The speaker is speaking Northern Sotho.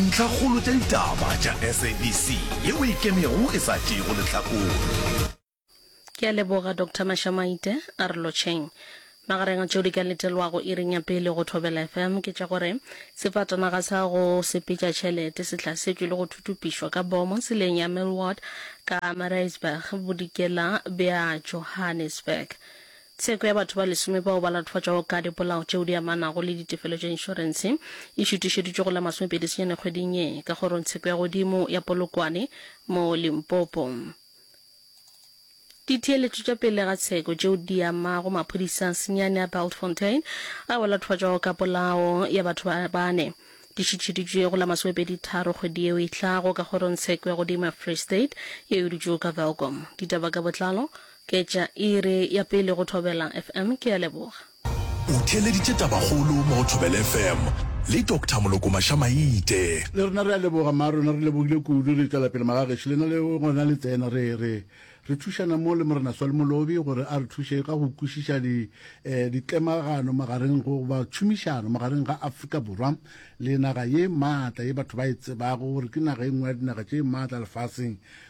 Ntlhakgolo tša ditaba tša SABC yeo e ikemego e sa tšeego lehlakore. Ke a leboga Doctor Mashamaite. A re lotšheng. Magareng a tšeo di ka letelwago iring ya pele go Thobela FM ke tša gore sefatanaga sa go sepetša tšhelete se hlasetšwe le go thutupišwa ka bomo tseleng ya Millward ka Mareisburg, bodikela bja Johannesburg. Tsheko ya batho ba lesome bao ba latofatšwago ka dipolao tšeo di amanago le ditefelo tša inšorense e šuthišeditšwe go la masomepedi senyane kgweding ye ka Kgorong Tsheko ya Godimo ya Polokwane mo Limpopo. Ditheeletšo tša pele ga tsheko tšeo di amago maphodisa senyane a Bultfontein ao a latofatšwago ka polao ya batho ba bane di šuthišeditšwe go la masomepedi tharo kgwedi yeo e tlago ka Kgorong Tsheko ya Godimo ya Free State yeo e dutšego ka Welkom. Ditaba ka botlalo Ke tša iri ya pele go Thobela FM. Ke a leboga. O theeleditše tabakgolo mo go Thobela FM le Doctor Moloko Mašamaite. Le rena re a leboga mma rona re lebogile kudu re tšwela pele magagešo lena le gona le tsena re re re thušana mo le morena swali molobi gore a re thuše ka go kwešiša di eh, ditlemagano magareng go ba tšhomišano magareng ga afrika borwa le naga ye maatla ye batho ba e tsebago gore ke naga e nngwe ya dinaga tše maatla lefaseng